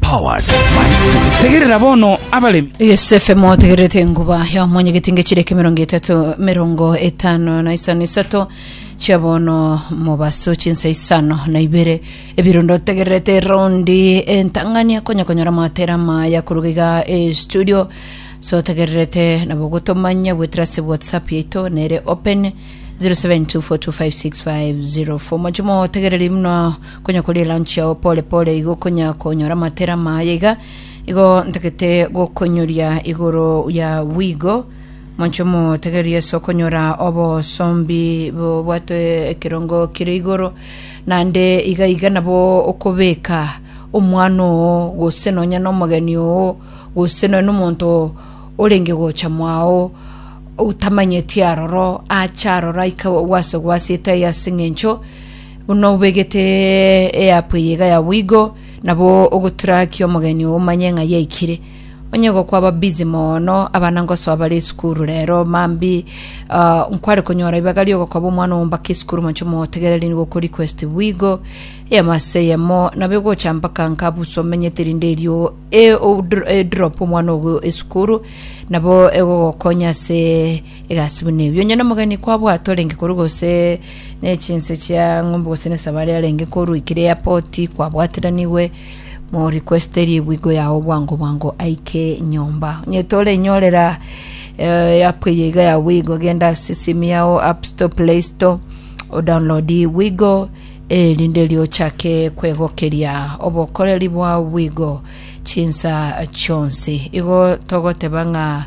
Powered by Citizen. tegerera bono abaremi Yosefe motegererete enguba ya omonyegeti ngechireka emerongo etato merongo etano na isano isato chia bono mobaso chinsa isano na ibere ebirundo tegererete raundi entang'ani akonya konyora matera maya koruga iga e studio so tegererete nabo gotomanya gwetera ase whatsapp yaito nere open 0724256504 mochimo tegereri muna Konya koria elunch yao pore pore igo okonya konyora amatera amaya iga igo ntagete gokonyoria igoro ya wigo monche omotegeria Yesu okonyora obosombi bobwate ekerongo kire igoro nande iga iga nabo okobeka omwana oo gose nonya nomogeni oo gose nonya nomonto orenge gocha mwao utamanyeti aroro acha aroro aika gwase gwasete aye ase ng'encho Buna obegete eapu eye iga ya boigo, nabo ogotrakia omogeni oo omanye ng'a yaikire. Onye gokwaba busy mono, abana ngosoa bare esukuru rero, mambi ah, nkware konyora ribaga riogokoba omwana omombaka esukuru moche omotegereri nigo oko request boigo, eyemo ase eyemo, nabo egocha mpaka nkabusu omenyete rinde erio e- odr- edrop omwana ogo esukuru, nabo egogokonya ase Egasi buna ebi, onye nomogeni kwabwatwa arenge korwa gose nechinse chia ng'ombe gose nesabari arenge korwa ikire ya poti kwabwatiranigwe, morikweste ribugo yao bwango bwango aike nyomba. Onye torenyorera eh, app eye iga ya Wigo, genda ase esimu yao App Store, Play Store, odownload Wigo erinde erio ochake kwegokeria obokoreri bwa Wigo chinsa chionsi. Igo togoteba ng'a